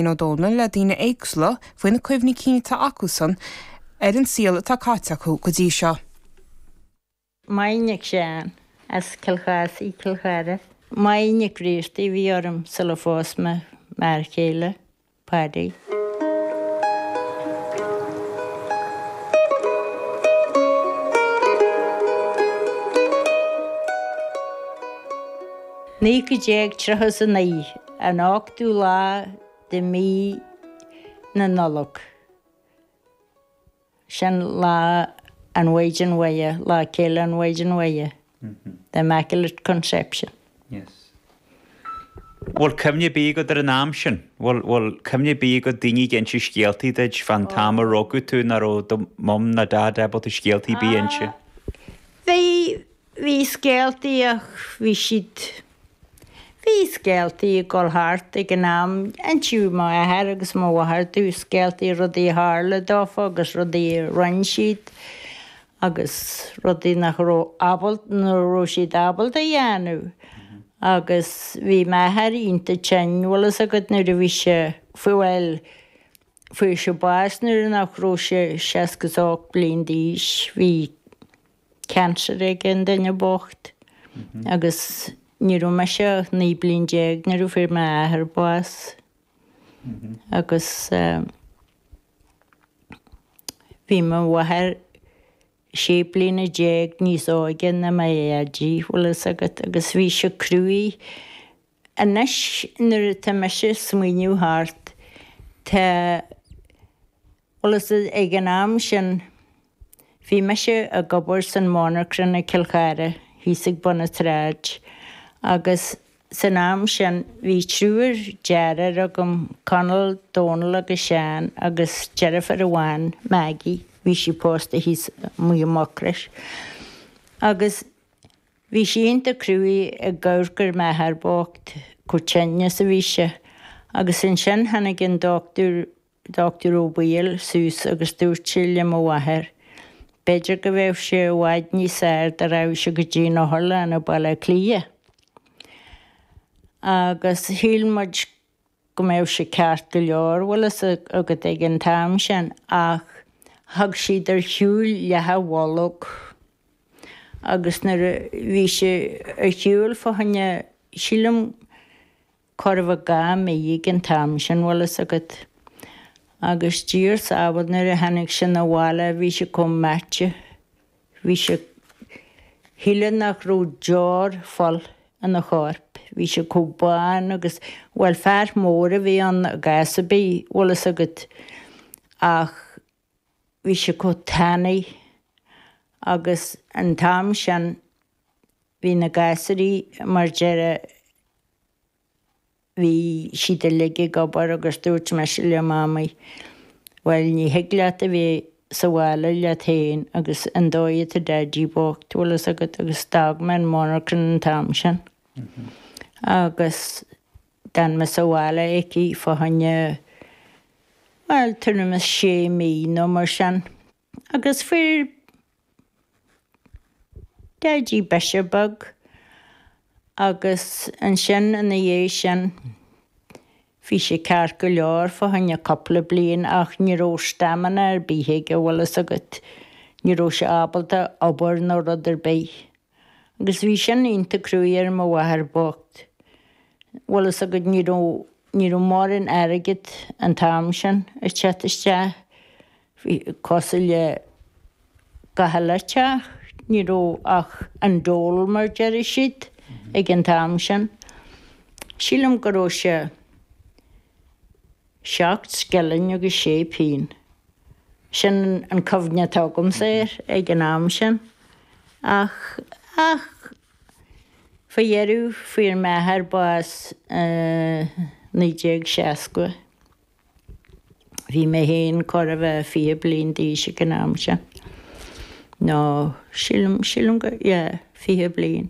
Ó Dónaill le daoine éagsula faoi na cuimhní cinn atá acusan ar an saol atá caite acu go dtí seo. Máire Nic Sheáin as Cill Chathasaigh i gCill Chartha. Máire Nic Bhriartaigh a bhí orm sula phós mé m'fhear chéile, Paddy. Nic Bhriain as Cill Chartha. 1939. an ochtú lá de mhí na Nollag, sin lá an Mhaighdean Mhuire, lá féile an Mhaighdean Mhuire, the Immaculate Conception. Yes. Bhfuil cuimhne ar bith agat ar an am sin? Bhfuil, bhfuil cuimhne ar bith agat daoine ag inse scéaltaí duit fán t-am a rugadh tú ná raibh do mum ná dad ábalta scéaltaí ar bith a inse? Bhí, bhí scéaltaí ach bhí siad Bhí scéaltaí ag dul thart ag an am, insíodh mo athair agus mo mháthair dúinn scéaltaí rudaí a tharla dófa agus rudaí a rinne siad agus rudaí nach raibh ábalta, nach raibh siad ábalta a dhéanamh. Agus bhí m'athair iontach tinn, bhfuil fhios agat, nuair a bhí sé, fuair, bhuel, fuair sé bás nuair nach raibh sé seasca is ocht bliain d'aois. Bhí. cancer ag an duine bocht agus ní raibh mise ach 19 bliain nuair a fuair m'athair bás agus bhí mo mháthair 16 bliana níos óige ná mo dhaidí, bhfuil 'fhios agat, agus bhí sé cruaidh. Anois nuair atá mise ag smaoineamh thart tá. Bhfuil fhios agat, ag an am sin bhí mise ag obair san mhonarchan i gCill Chartha thíos ag bun an tsráid agus san am sin bhí triúr deartháir agam, Conall, Dónal agus Seán agus deirfiúr amháin, Maggie, bhí sí pósta thíos amuigh i Mucros agus bhí sé iontach cruaidh ag amharc ar m'athair bocht, chomh tinn is a bhí sé agus ansin tháinig an dochtúir Dochtúir Ó Baoill suas agus dúirt sé le mo mháthair, 'B'fhéidir go mbeadh sé i bhfad níos fhearr dá rachadh sé go dtí'n otharlann i mBaile Átha Cliath. Agus shíl muid go mbeadh sé ceart go leor, bhfuil fhios agat, ag an t-am sin, ach thug siad ar shiúil leath a bholg agus nuair a bhí sé ar shiúil fá choinne, sílim, Chóir a bheith dhá mhí ag an t-am sin, bhfuil 'fhios agat. Agus Dia ár sábháil nuair a tháinig sé 'na bhaile bhí sé comh meaite. Bhí sé. shílfeá nach raibh deoir fola ina chorp. Bhí sé comh bán agus, bhuel, fear mór a bhí ann, i gcás ar bith, bhfuil 'fhios agat. Ach. Bhí sé chomh tanaí agus an t-am sin bhí na gasúraí mar deireadh bhí siad uilig ag obair agus dúirt mise le Mamaí bhuel ní thig leat a bheith sa bhaile leat féin agus an dóigh atá Daidí bocht bhfuil fhios agat agus d'fhág mé an monarchan an t-am sin agus D'fhan mé sa bhaile aici fá choinne, bhuel, tuairim is sé mí nó mar sin. Agus fuair Daidí biseach beag agus ansin ina dhiaidh sin, bhí sé ceart go leor fá choinne cúpla bliain ach ní raibh stamina ar bith aige, bhfuil 'fhios agat, ní raibh sé ábalta obair ná rud ar bith. Agus bhí sin iontach cruaidh ar mo mháthair bhocht. Bhfuil fhios agat, ní raibh, ní raibh mórán airgead an t-am sin ag teacht isteach. Bhí, cosúil le gach uile teach, ní raibh ach an dole mar deireadh siad ag an t-am sin. Sílim go raibh sé. Seacht scilling agus sé pingin. Sin an chuimhne atá agamsa air ag an am sin. Ach, ach, faoi dheireadh, fuair m'athair bás i naoi déag seasca. Bhí mé féin chóir a bheith fiche bliain d'aois ag an am sin. Nó, sílim, sílim go, yeah, fiche bliain.